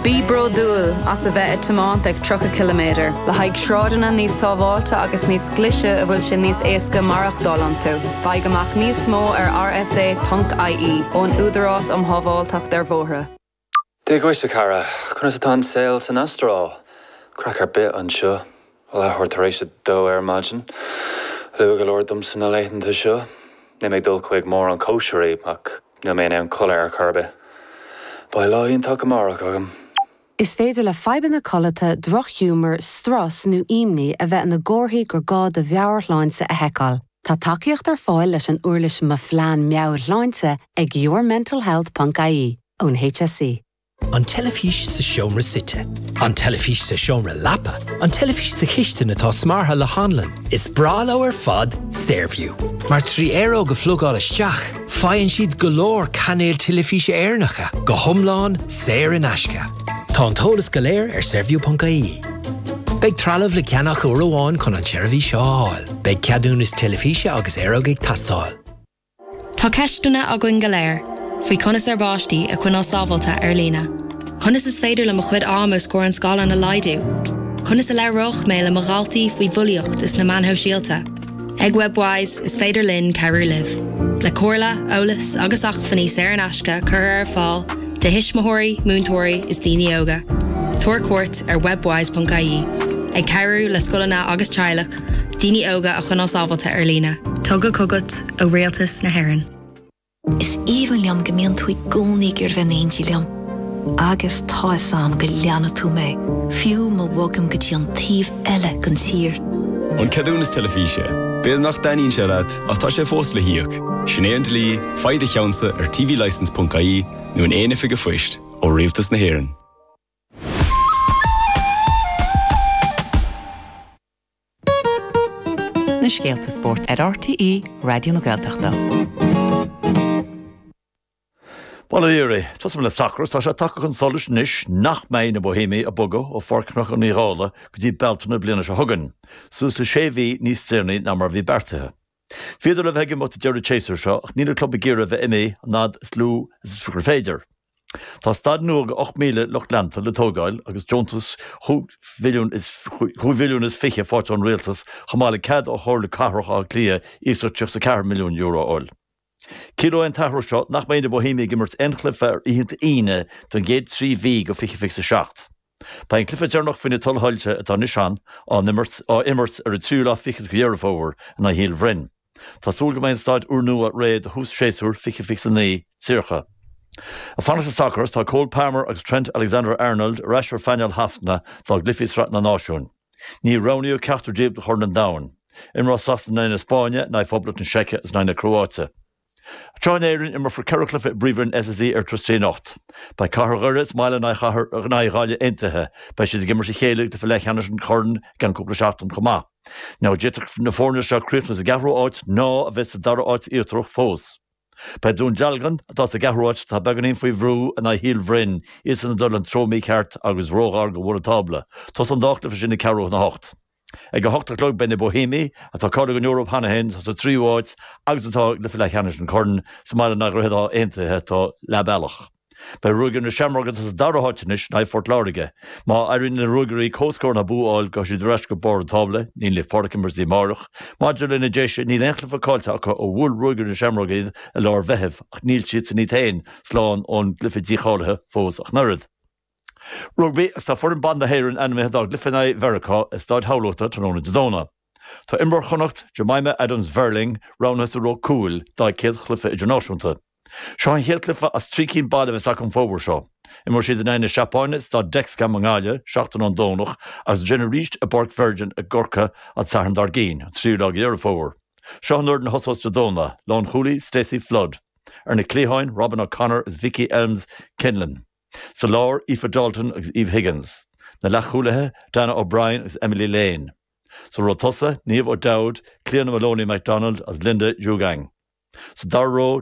Bí bródúil as a bheith ag tiomáint ag 30 ciliméadar le haghaidh sráideanna níos sábháilte agus níos glise a bhfuil sé níos éasca maireachtáil iontu. Faigh amach níos mó ar rsa.ie, ón Údarás um Shábháilteacht ar Bhóithre. Dia dhuit a chara, conas atá an saol san Astráil? Craic ar bith anseo. Leathuair tar éis a dó ar maidin. Luath go leor domsa na laethanta seo. Níl mé ag dul chuig mórán cóisirí, ach níl mé in ann codladh ar chor ar bith. Beidh lá iontach amárach agam. Is féidir le fadhbanna codlata, drochghiúmar, strus nó ímní a bheith ina gcomharthaí gur gá do mheabhairshláinte a sheiceáil. Tá tacaíocht ar fáil leis an uirlis Mo Phlean Meabhairshláinte ag yourmentalhealth.ie ón HSE. An teilifís sa seomra suite. An teilifís sa seomra leapa. An teilifís sa chistin atá smeartha le hanlann. Is breá leo ar fad Saorview, mar trí aeróg a phlugáil isteach, faigheann siad go leor cainéil teilifíse Éireannacha, go hiomlán saor in aisce. Tá an t-eolas go léir ar Saorview.ie. Beidh trealamh le ceannach uair amháin chun an tseirbhís a fháil. Beidh ceadúnas teilifíse agus aeróg ag teastáil. Tá ceisteanna againn go léir faoi conas ár bpáistí a choinneáil sábháilte ar líne. Conas is féidir liom mo chuid ama os comhair an scáileáin a laghdú? Conas a labhróidh mé le mo dhaltaí faoi bhulaíocht is na meáin shóisialta? Ag Webwise, is féidir linn cabhrú libh, le comhairle, eolas agus acmhainní saor in aisce curtha ar fáil do thuismitheoirí, múinteoirí is daoine óga. Tabhair cuairt ar webwise.ie, ag cabhrú le scoileanna agus teaghlach Daoine óga a choinneáil sábháilte ar líne. Tugtha chugat ó Rialtas na hÉireann. Is aoibhinn liom go mbíonn tú i gcónaí ag goil in éindí liom. Agus tá a fhios 'am go leanfaidh tú mé, fiú má bhogaim go dtí an taobh eile den tír. An ceadúnas teilifíse. B'fhéidir nach dtaitníonn sé leat, ach tá sé fós le híoc. Sin é an dlí, faigh do cheannsa ar tvlicence.ie nó in aon oifig an phoist ó Rialtas na hÉireann. na scéalta spóirt ar RTÉ Raidió na Gaeltachta. Bhuel a Áine, tosóidh mé le sacar agus tá sé tagtha chun solais anois nach mbeidh na Bohéimigh ag bogadh ó Pháirc Chnocán Uí Dhálaigh go dtí Bealtaine na bliana seo chugainn, suas le sé mhí níos deireanaí ná mar a bhí beartaithe. Bhíodar le bheith ag imeacht deireadh an tséasúir seo ach níl an club ag iarraidh a bheith imithe an fhad is lú agus is féidir. Tá staid nua ag 8,000 lucht leanta le tógáil agus deontas chúig mhilliún is fiche faighte ón Rialtas chomh maith le cead ó Chomhairle Cathrach Átha Cliath iasacht €34 milliún a fháil. Ciallaíonn an t-athrú seo nach mbeidh na Bóihéamaigh ag imirt aon chluiche ar oícheanta Aoine don gcéad trí mhí de fiche fiche is a seacht. Beidh an cluiche deireanach faoi na tuilsoilse atá anois ann á imirt ar an tríú lá fichead de Dheireadh Fómhair in aghaidh Shíol Bhroin. Tá súil go mbeidh an staid úrnua réidh do thús séasúr fiche fiche is a naoi tríocha. Ag fanacht sa sacar, tá Cole Palmer agus Trent Alexander-Arnold ar ais ar phainéal Shasana dá gcluichí i Sraith na Náisiún. Níor roghnaíodh ceachtar díobh do Chorn an Domhain. Imreoidh Sasana in aghaidh na Spáinne, in aghaidh Phoblacht na Seice agus in aghaidh na Cróáite. Tráth in Éirinn, imreofar ceithre chluiche i bPríomhroinn SSE Airtricity anocht. Beidh Cathair Dhoire sa mbaile in aghaidh Ghaillimh Aontaithe. Beidh siad ag imirt a chéile i gcluiche leathcheannais an Choirn i gceann cúpla seachtain chomh maith. Ná d'fhéadfadh na foirne seo críochnú sa gceathrú háit ná a bheith sa dara háit íochtarach fós. Beidh Dún Dealgan, atá sa gceathrú áit, atá beagáinín faoi bhrú in aghaidh Shíol Bhroin, iadsan ag dul an treo mícheart agus róghar do bhun an tábla. Tosóidh an dá chluiche sin ag ceathrú chun a hocht. Ag a hocht a chlog beidh na Bóihéamaigh, atá cáilithe don Eoraip cheana féin, atá sa tríú áit agus atá i gcluiche leathcheannais an Choirn, sa mbaile in aghaidh Dhroichead Átha Aontaithe, atá leathbealach. Beidh Ruagairí na Seamróige atá sa dara háit anois in aghaidh Phort Láirge. Má éiríonn le Ruagairí comhscór ná bua a fháil gabhfaidh siad ar ais go barr an tábla, níl Naomh Pádraig ag imirt go dtí amáireach. Maidir leis na Déise níl aon chluiche cáillte acu ó bhuail Ruagairí na Seamróige iad i lár an Mheithimh ach níl siadsan iad féin slán ón gcluiche dícháilithe fós ach an oiread. Rugbaí, Agus tá foireann ban na hÉireann ainmithe dá gcluiche in aghaidh Mheiriceá i Staid Thamhlachta tráthnóna Dé Domhnaigh, Tá imreoir Chonnacht, Jemimah Adams Verling, roghnaithe sa ró cúil dá céad chluiche idirnáisiúnta. Seo an chéad cluiche as trí cinn baile a bheas acu an fómhar seo. Imreoidh siad in aghaidh na Seapáine i Staid Dexcom i nGaillimh seachtain ón Domhnach agus ansin arís i bPáirc Virgin i gCorcaigh an Satharn dar gcinn, an tríú lá de Dheireadh Fómhair. Seo an fhoireann a thosós Dé Domhnaigh, lánchúlaí, Stacey Flood, Ar na cliatháin, Robyn O'Connor agus Vicky Elmes Kinlan, Sa lár, Aoife Dalton agus Eve Higgins, Na leathchúlaithe, Dannah O'Brien agus Emily Lane. Sa ró tosaigh, Niamh O'Dowd, Cliodhna Moloney MacDonald agus Linda Djougang. Sa dara ró,